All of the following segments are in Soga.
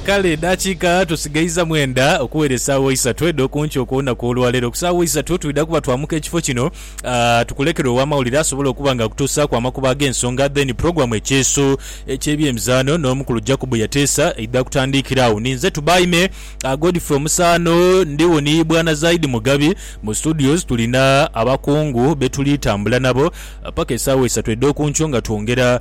Kale edaakiika tusigaiza mwenda okuwera esaawa isatu edh'oku nkya okw'olunaku olwa leero. Ku saawa isatu twidha kuba twamuka ekifo kino tukulekere ow'amawulire asobole okuba nga akutuusaaku amakubo ag'ensonga then pulogulaamu Ekyeeso eky'ebyemizaano n'omukulu Jacob Yateesa eidha kutandiikira agho. Ninze Tubaime Godfrey Omusaano ndigho ni Bwana Zaidi Mugabi. Mu studios tulina abakungu be tuli tambula nabo paka esaawa isatu edh'oku nkyo nga twongera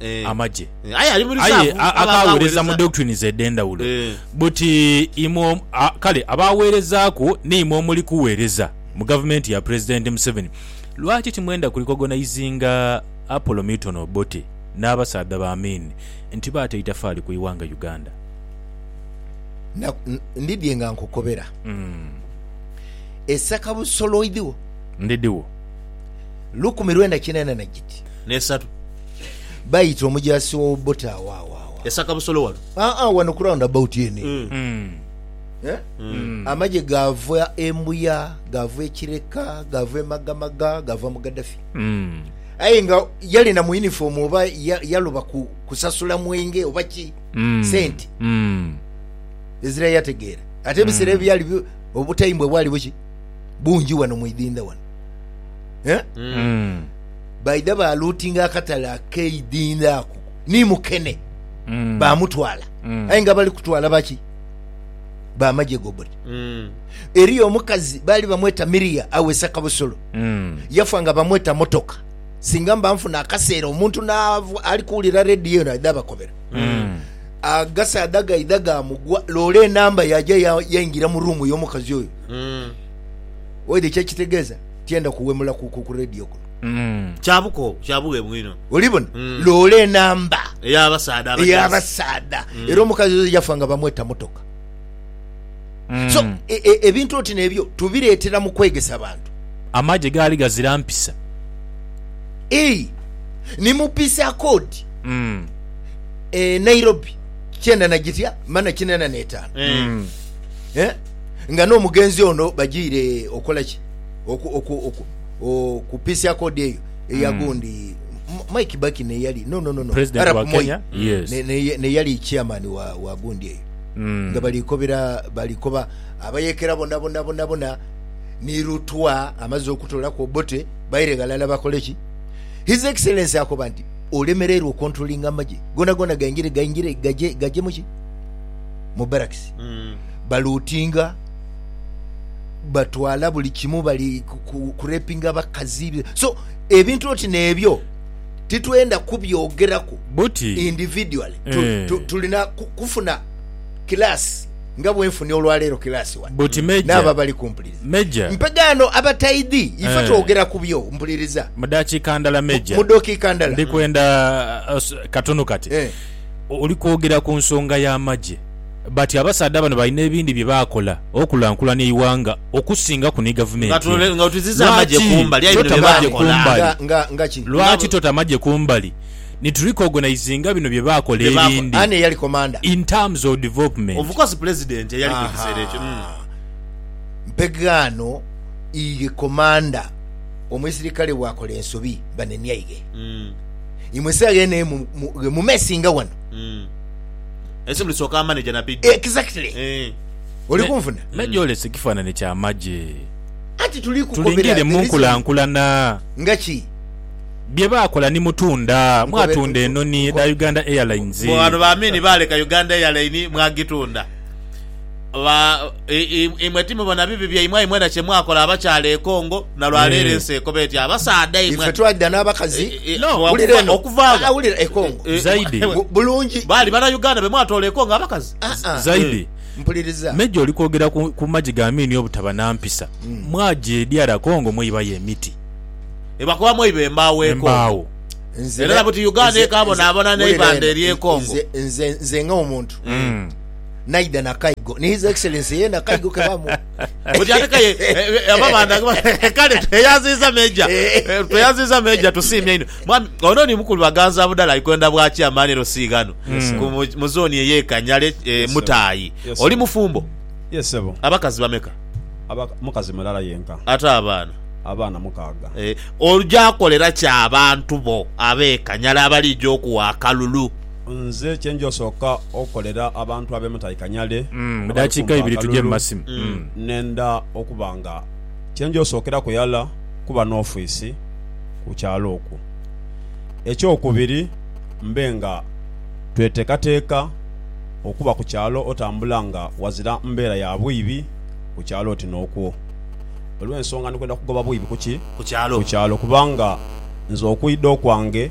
Eh. amagye. Eh, aye ali mu Aye reserve, a- abo akaghereza mu abaghereza. doctrines edh'endhawulo. Eh. But imwe om- a- kale abagherezaaku n'imwe omuli kughereza mu gavumenti ya Pulezidenti Museveni, lwaki timwenda kurecognizinga Apollo Milton Obote n'abasaadha ba Amin nti baata eitafaali ku ighanga Uganda? Na- n- ndidhie nga nkukobera esaka busoloidhiwo Ndidhiwo. lukumi lwenda kinaana na giti N'esatu. Bayita omujaasi wa Obote agho agho agho. Esaka busolo wano? Aa, wano ku round about eno eno. Eh? Amagye gaava e Mbuya, gaava e Kireka, gaava e Magamaga, gaava mu Gaddafi. Aye nga yali na mu uniform oba ya- yaloba ku- kusasula mwenge oba ki, sente ezira yategeera. Ate ebiseera ebyo byali bi- obutayimbwa bwali buki? Bungi wano mu idhindha wano. Eh? Baidha baalootinga akatale akeidhindha ako ni mukene, baamutwala. Aye nga bali kutwala baki? B'amagye gobody. Eriyo omukazi baali bamweta Miria awesa kabusolo, yafa nga bamweta motoka. Singa mba nfuna akaseera omuntu n'ava ali kuwulira rediyo eno aidha abakobera. Agasaadha gaidha gaamugwa, loole enamba yaja yaingira mu ruumu y'omukazi oyo. Oidha kyekitegeeza? Tiyenda kuwemula ku ku radio kuno. Kya bukoowu, kya bughemu inho. Olibona? Loola enamba. Ey'abasaadha abajaasi. Ey'abasaadha. Era omukazi oyo yafa nga bamweta motoka. So, e, e, ebintu oti n'ebyo tubireetera mu kwegesa bantu. Amagye gaali gazira mpisa. Ii, Ni mu Peace Accord e Nairobi, kyenda na gitya mana kinaana n'etaanu. Eh? nga n'omugenzi ono bajiire okola ki okupiisia kodi eyo eya mm. gundi Mwai Kibaki neyali no no no no President wa Kenya mm. yes neyali chairman wa wa gundi eyo mm. nga balikobera balikoba abayekera bona bona bona bona ni lutwa amaze okutola ku obote baire galala bakole ki his excellency akoba nti olemererwa controlling amaje gona gona gaingire gaingire gaje gaje muki mu barracks mm. balootinga batwala buli kimu, bali kurepinga abakazi, so ebintu oti n'ebyo titwenda kubyogeraku individually, eh. tulina kufuna kilaasi nga bwenfunye olwaleero kilaasi wano n'abo abali kumpuliriza mpegaano abataidhi ife eh. twogera ku byo mpuliriza mu dakiika ndala meja mu dakiika ndala ndi kwenda uh, katunu kati eh. oli kwogera ku nsonga y'amagye bati abasaadha bano balina ebindi bye baakola okulankulania eighanga okusingaku ni gavumenti eno. Lwaki tota amagye kumbali ni tu recognizinga bino bye baakola ebindi in terms of development? Ensi muli soka amaneja na bidhi. Exactly. Eeh. Oli kunfuna. Me gyolese kifanane kya magye. Anti tuli kukobera the reason. Tulingirire munkulankulana. Nga ki? Bye baakola ni mutunda. Mwatunda enoni edha Uganda Airlines. Mbu bano ba Amin baaleka Uganda Airline mwagitunda. Ba, i, i, imwe timubona bibi byaimwe aye mwena kye mwakola abakyala e Congo, na lwa leero Eh. ensi ekoba etya abasaadha imwe. Ife twalida n'abakazi. Eh, eh, No, Wulira okuva- eno. okuva agho. Ah, wulira e Congo. Eh, Zaidi. eh, Bu- bulungi. Baali bana Uganda be mwatoola e Congo abakazi. Ah, ah. Zaidi. Mpuliriza. Meja oli kwogera ku, ku magi ga miini obutaba na mpisa. Mwaja eri ara Congo mweibayo emiti, Ebakuba mweiba embaawo e Congo. embaawo. Nze Era ne- buti Uganda nze- ekaabonabona nze- n'eibanda wulira eno. ery'e Congo. Nze- nze- nze nga omuntu Mm. naidha na kaigo ni his excellence yena kaigo ke bamuwa Okyatekayo abo abaana kale tweyanziza Major tweyanziza Major tusiimye inho mwami ono ni mukulu Baganza budhala ali kwenda bwa chairman LC ghano ku mu- mu zone eye Kanyale eh, Mutaayi Yes, oli sir. mufumbo Yes sebo. abakazi bameka Aba mukazi mulala yenka. ate abaana Abaana mukaaga. Eh, oja kolera ki abantu bo abe Kanyala abalija okuwa akalulu Nze kye nja osooka okukolera abantu ab'e Mutaikanyale abali kumpi akalulu, nenda okuba nga kye nja osookeraku ghala kuba n'ofiisi ku kyalo okwo. Eky'okubiri mbe nga tweteekateeka okuba ku kyalo otambula nga ghazira mbeera ya bwibi ku kyalo oti n'okwo. Olw'ensonga ndi kwenda kugoba bwibi ku kyalo kubanga nze okwidha okwange,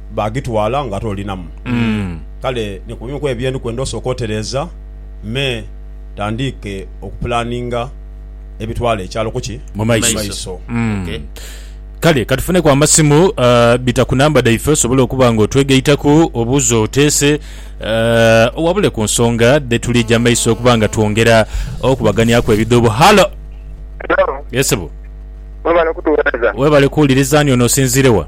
baagitwala ng'ate olinamu. Kale ni ku bimu ku ebyo bye ndi kwenda osooke otereeza me tandiike okupulaaninga ebitwala ekyalo ku ki? Mu maiso. maiso. Okay. Kale ka tufuneku amasimu. eh, bita ku namba dhaife osobole okuba nga otwegaitaku obuuza oteese, eh, owabule ku nsonga dhe tulija maiso okuba nga twongera okubaganiaku ebidhuubo. Halo! Hello, Yes, sebo. mwebale kutuwereza. Webale kuwuliriza. Ani ono osinziire wa?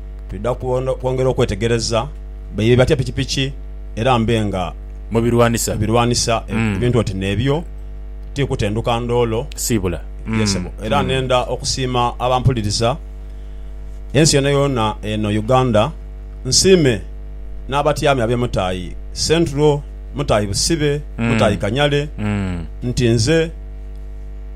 Twidha kwongera okwetegereza baidha batya pikipiki era mbe nga Mu birwanisa. mu birwanisa e- ebintu oti n'ebyo. Ti kutenduka ndoolo. Siibula. Ye sebo, era nenda okusiima abampuliriza ensi yoonayoona eno Uganda. Nsiime n'abatyami ab'e Mutaayi Central, Mutaayi Busibe, Mutaayi Kanyale nti nze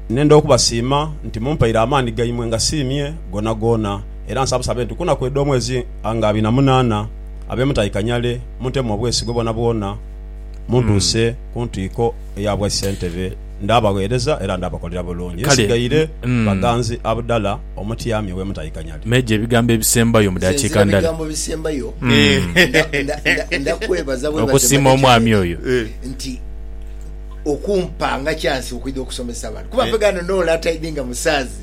nenda okubasiima nti mumpaire amaani gaimwe ngasiimye goonagoona. Era nsabusabe nti ku naku edh'omwezi nga abiri na munaana, abe mutahi Kanyale muntemu obwesigwa bwonabwona, muntuuse ku ntwiko eya bwa ssentebe. Ndaabagheereza era ndaabakolera bulungi. Nsigaire Baganzi Abdallah, omutyami ow'e Mutahi Kanyale. Meeja ebigambo ebisembayo mu Nze dakiika nzira ndala. bigambo bisembayo. Nda- nda- nda- Ndakwebaza bwebaze Okusiima Manager omwami Meeja oyo. nti okumpanga chance okwidha okusomesa abantu kuba mpegana no latidinga musaazi.